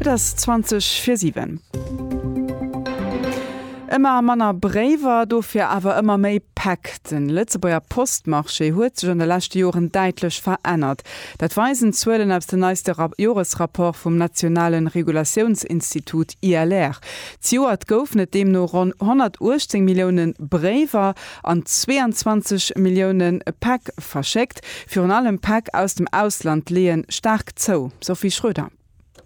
Et ass 20 fir 7. Ëmmer manner Bréiwer, dofir awer ëmmer méi Päck. Den Lëtzebuerger Postmarché huet sech an de leschte Joren däitlech verännert. Dat weisen d'Zuelen aus den neiste Joresrapporte vum nationale Regulatiounsinstitut ILR. Zejoert goufen et deemno ronn 118 Milliounen Bréiwer an 22 Millioune Päck verschéckt. Virun allem Päck aus dem Ausland leeë staark zou, Sophie Schroeder.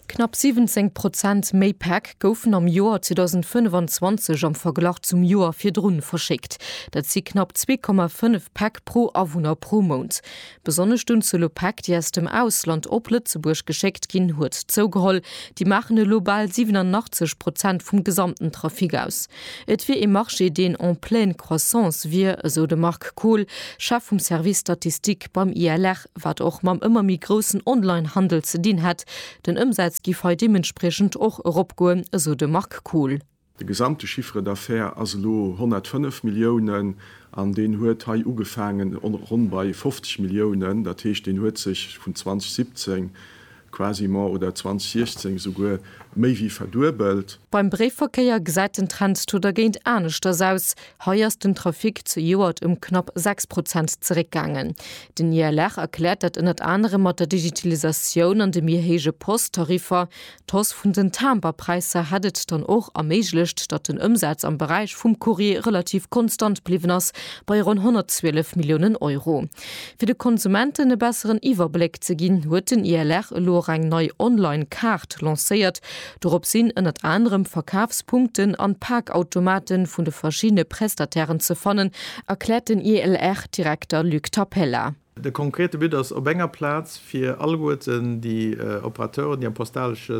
Knapp 17 Prozent méi Päck goufen am Joer 2025 am Verglach zum Joer virdrun verschéckt. Dat si knapp 2,5 Päck pro Awunner pro Mount. Besonnesch d'Unzuel u Päck, déi aus dem Ausland op Lëtzebuerg geschéckt ginn, huet zougeholl. Déi maachen elo bal 87 Prozent vum gesamten Trafic aus. Et wier ee Marché, deen en pleine croissance wier, esou de Marc Kohl, Chef vum Service Statistique beim ILR, wat och mam ëmmer méi groussen Online-Handel ze dinn hätt. Den Ëmsaz giff hei deementspriechend och eropgoen, esou de Marc Kohl. De gesamte Chiffre d'affaires ass elo 105 Milliounen an deen huet hei ugefaangen ronn bei 50 Milliounen. Dat heescht, deen huet sech vun 2017 quasiment oder 2016 esouguer méi wéi verduebelt. Beim Bréifverkéier gesäit den Trend to dergéint aneschters aus. Hei ass den Trafic zejoert ëm knapp 6 Prozent zeréckgaangen. Den ILR erkläert dat ënnert anerem mat der Digitalisatioun an de méi héije Post-Tariffer. D'Hausse vun den Timberpräisser hätt et dann och erméiglecht, datt den Ëmsaz am Beräich vum Courrier relativ konstant bliwwen ass, bei ronn 112 Milliounen Euro. Fir de Konsumenten e besseren Iwwerbléck ze ginn, huet den ILR elo och eng nei Online-Kaart lancéiert. Dorop sinn ënnert anerem Verkafspunkten an Pakautomate vun de verschiddene Prestatairen ze fannen, erkläert den ILR-Direkter Luc Tapella. De konkrete But ass, op enger Plaz fir alleguerten déi Operateuren, déi am postalesche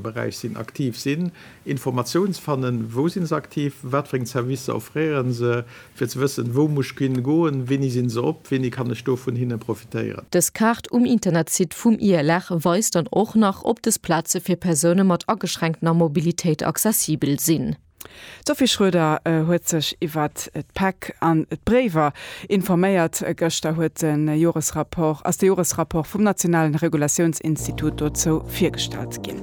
Beräich sinn, aktiv sinn, Informatioun ze fannen, wou si se aktiv, wat fir eng Servicer offréieren se, fir ze wëssen, wou muss ech hin goen, wéini sinn se op, wéini kann ech do vun hinne profitéieren. Dës Kaart um Internetsite vum ILR weist dann och nach, ob dës Plaze fir Persoune mat ageschränktener Mobilitéit accessibel sinn. D'Sophie Schroeder huet sech iwwer d'Päck an d'Bréiwer informéiert. Gëschter huet de Joresrapport, ass de Joresrapport vum nationalen Regulatiounsinstitut dozou virgestallt ginn.